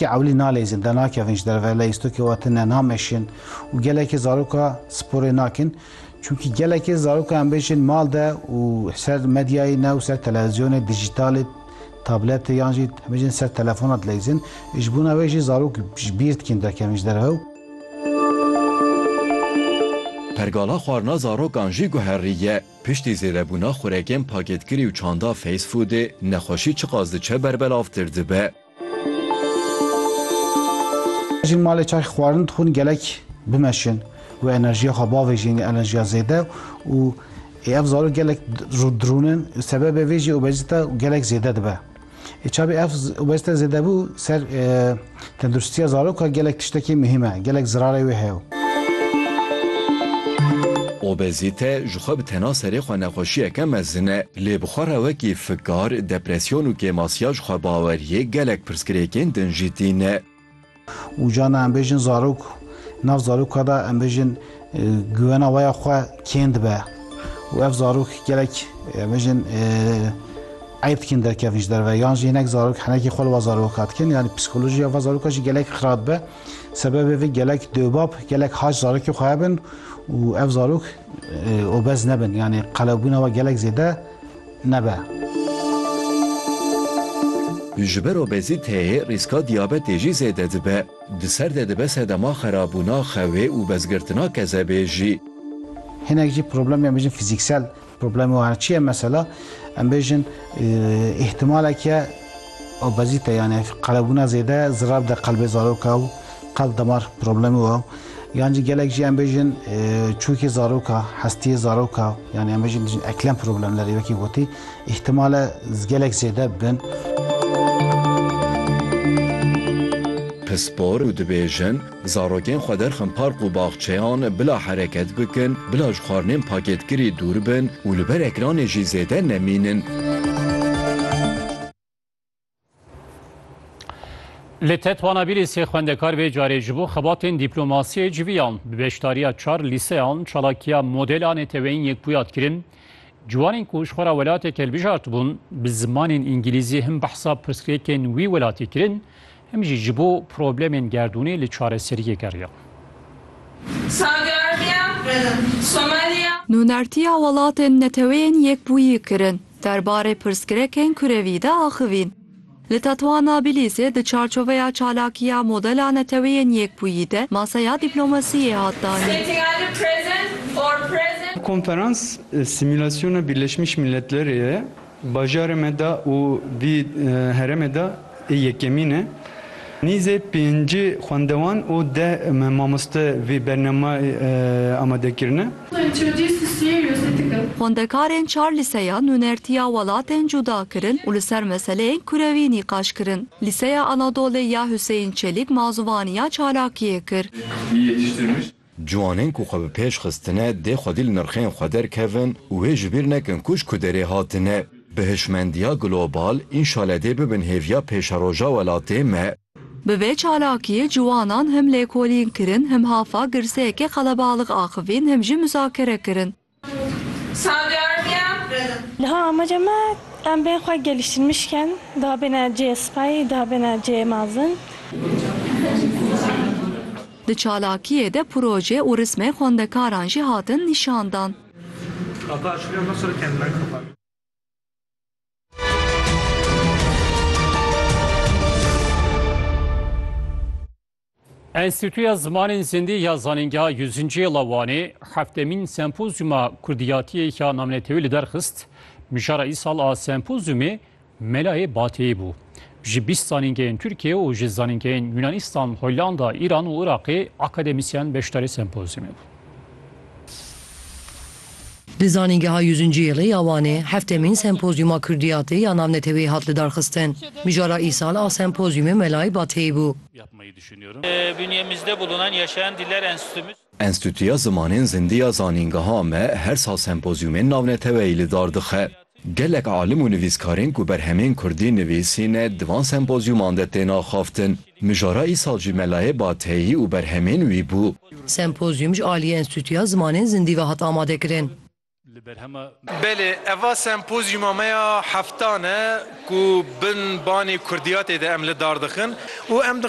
Ti ewlî nalezin, denakevin ji derve, leyîstokê we tune, nameşin û gelekê zaroka sporê nakin. Çunkî gelekê zaroka em bêjin mal de û ser medyayê ne û ser televizyonê, dijîtalê, tabletê yan jî em bêjin ser telefona dileyîzin. Ji bona wê jî zarok ji bîr dikin derkevin ji derve û. Pergala xwarina zarokan jî guherîye. Piştî zêdebûna xurekên pakêtkirî û çanda fast foodê, nexweşî çiqas diçe berbelav tir dibe. Jin malê çay xwarin dixwin gelek bimeşin û enerjiya xwe bavê jin enerjiya zêde û ev zarok gelek dirûnin sebebê vê jî obezîte gelek zêde dibe. Çabî ev obezîte zêdebû ser tenduristiya zarok gelek tiştekî muhîm e, gelek zirarê wê heye. Obezîte jixwe bi tena serê xwe nexweşiyeke mezin e. Lê bi xwe re wekî fikar, depresyon û kêmasiya ji xwebaweriyê gelek pirsgirêkên din jî tîne. Û carna em bêjin zarok, nav zaroka de em bêjin guwena waya xwe kêm dibe û ev zarok gelek em bêjin eyb dikin derkevin ji derve yan jî hinek zarok henekî xwe li va zaroka dikin yanî psîkolojiya va zaroka jî gelek xira dibe. Sebebê vê gelek dewbab, gelek hac zarokê xwe hebin û ev zarok Obez nebin yani qelewbûna we gelek zêde nebe. Ji ber obezîteyê rîska diyabetê jî zêde dibe. Di ser de dibe sedema xerabûna xewê û bezgirtina kezebê jî. Hinek jî problemê em bêjin fizîksel problemê wan çi ye mesela em bêjin îhtimaleke Obezîte yanî qelebûna zêde zirar bide qelbê zaroka û qelb damar problemê we. Yan jî gelek jî em bêjin çûkê zaroka, hestiyê zaroka yanî em bêjin dijîn eklem problemlerê wekî gotî îhtimal e gelek zêde bibin. Pispor û dibêjin Zarokên xwe derxin park û baxçeyan bila hereket bikin, bila ji xwarinên pakêtkirî dûr bin û li ber ekranê jî zêde nemînin. Li Tetwana bîrî sê xwendekar vê carê ji bo xebatên dîplomasiyê civiyan. Bi beşdariya çar lîseyan çalakiya modela neteweyîn yek bûya kirin. Ciwanên ku ji xwe re welateke hilbijartibûn, bi zimanên îngîlîzî him behsa pirsgirêkên wî welatê kirin, Em jî ji bo problemên gerdûnê li çareseriyê geriyan. Nûnertiya Welatên Neteweyên Yekbûyî kirin derbarê pirsgrekên kurevî de axivîn. Li Tetwana Bilîsê di çarçoveya çalakiya Modela Neteweyên Yekbûyî de maseya dîplomasiyê hat danîn. Konferans simulasyona Birleşmiş Milletlerê ye. Bajarê me de û vî herêmê de ê yekemîn e. Nîzê pêncî xwendewan û deh mamoste vî bernameyê amade kirine. Xwendekarên çar lîseyan nûnertiya welatên cuda kirin û li ser meseleyên kurewî nîqaş kirin. Lîseya Anadolê ya Huseyîn Çelîk mazûvaniya çalakiyê kir. Ciwanên ku xwe bi pêş xistine dê xwedî li nirxên xwe derkevin û wê ji bîr nekin ku ji ku derê hatine. Bi hişmendiya global înşale dê bibin hêviya pêşeroja welatê me. Bi vê çalakiyê ciwanan him lêkolîn kirin, him hafa girseyekê qelebalix axivîn him jî muzakere kirin. Niha amaca me em bên xwe gelîştirmiş bikin, daha bêne cihê spay, daha bêne cihê mezin. Di çalakiyê de proje û rismên xwendekaran jî hatin nîşandan. Enstîtuya Zimanên Zindî ya Zanîngeha Yûzinciyê la Wanê heftemîn sempozyûma Kurdiyatiyê ya namnetewî li derxist. Mijara îsal a sempozyûmê Melayê Bateyî bû. Ji bîst zanîngehên Tirkiyê û ji zanîngehên Yûnanîstan, Hollanda, Îran û Iraqê akademîsyen beşdarê sempozyûmê bûn. Di Zanîngeha Yûzinciyêlê ya Wanê heftemîn Sempozyûma Kurdiyatê ya Navneteweyê hat lidarxistin. Mijara îsal a sempozyûmê Melayê Bateyî bû. Enstîtuya Zimanên Zindî ya Zanîngeha me her sal sempozyûmên navneteweyî lidar dixe. Gelek alim û nivîskarên ku berhemên kurdî nivîsîne di van sempozyûman de tên axaftin. Mijara îsal jî Melayê Bateyî û berhemên wî bû. Sempozyûm ji aliyê Enstîtuya Zimanên Zindî ve hat amadekirin. Belê eva sempozyûma me ya heftan e ku bin banê kurdiyatê de em li dar dixin û em dixwazin